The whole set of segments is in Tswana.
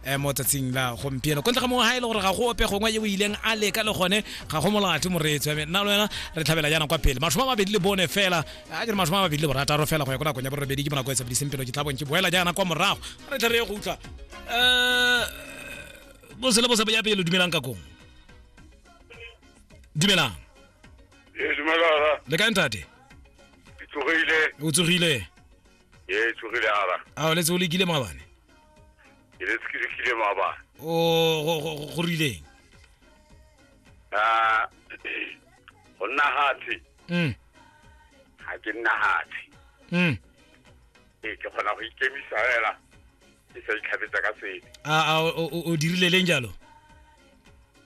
eh, mo tsatsing la gompieno kontle ga mongwe ga e le gore ga go ope gongwe yo o ileng a leka le gone ga go molate moreetsi wa me nna le wena re tlhabela yana kwa pele mashomo a mabedi le bone fela a ke re mashomo a mabedi le borataro fela go ya ko nakong ya borobedi ke bonako e sebediseng pelo ke tlhabong ke boela jaana kwa morago re tle re ye go utlwa um bose le bose ya pele dumelang ka kong dumelang Ee, dumelara, le kae ntate ke tlogile. o tsogile Ee, tsogile ara. a o letse o lekile maabane Ke le ke lekile maabane. o go- go go- go rileng Ah, go nna hatsi, mm ga ke nna hatsi. mm Ee, ke kgona go ikemisa fela, ke sa itlhabetsa ka sebe. a a o- o o dirile leng jalo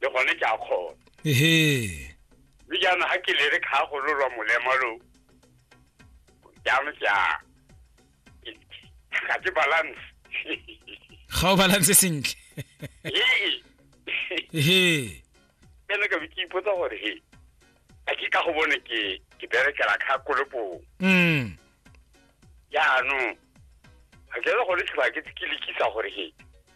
le gone ke a kgona ehe mme jaanong ga ke lere kga gololwa molema lo jaanong ke a ga ke balance ga o balance sentle ehe ene ka be ke ipotsa gore he a ke ka go bone ke ke berekela kgakolopong mm. jaanong ga ke le gone tlhoba ke ke lekisa gore he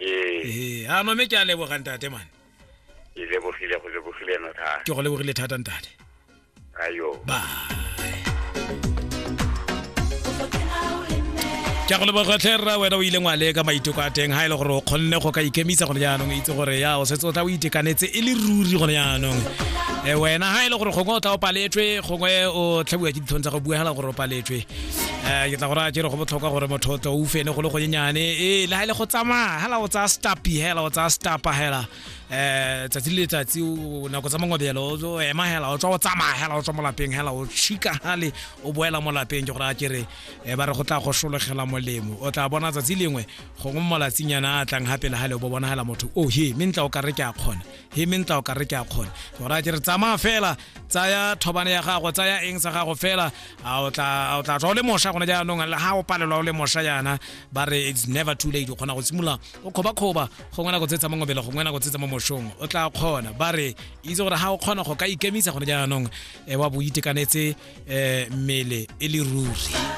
ee ee a no mme ke a leboga ntate mane ke lebogile go lebogile eno thata ke go lebogile thata ntate ayo ba ke go lebogotlhe rra wena o ile ngwale ka maiteko a teng ga e le gore o kgonne go ka ikemisa gone jaanong itse gore ya o setse o tla o itekanetse e le ruri gone jaanong e wena ga e le gore gongwe o tla o paletswe gongwe o tlhabiwa ke ditlhong tsa go bua fela gore o paletswe um ke tla go raya jere go botlhokwa gore motho tlo o fene go le gonyenyane ee le ga ile go tsamaya hela o tsaya stapi hela o tsaya stapa hela um tsatsi le letsatsi nako tsa mangwabelo o ema hela o tswa o tsamaya hela o tswa mo lapeng hela o shika gale o boela mo lapeng ke gore a kere um ba re go tla go sologela molemo o tla bona tsatsi lengwe gongwe mo malatsinyana a tlang gape le gale o bo bona hela motho o oh, he me ntla o ka re ke a kgona he me ntla o ka re ke a kgona ke gore a kere tsamaya fela tsaya thobane ya gago tsaya eng sa gago fela a o tla tswa o le mosha gone jaanong ga o palelwa o le mosha jaana ba re it's never too late o kgona go simolola o kgobakgoba gongwe nako tsetsa mo ngobele gongwe nako tsetsa mo moshong o tla kgona ba re itse gore ga o kgona go ka ikemisa gone jaanong um wa bo itekanetse um mmele e le ruri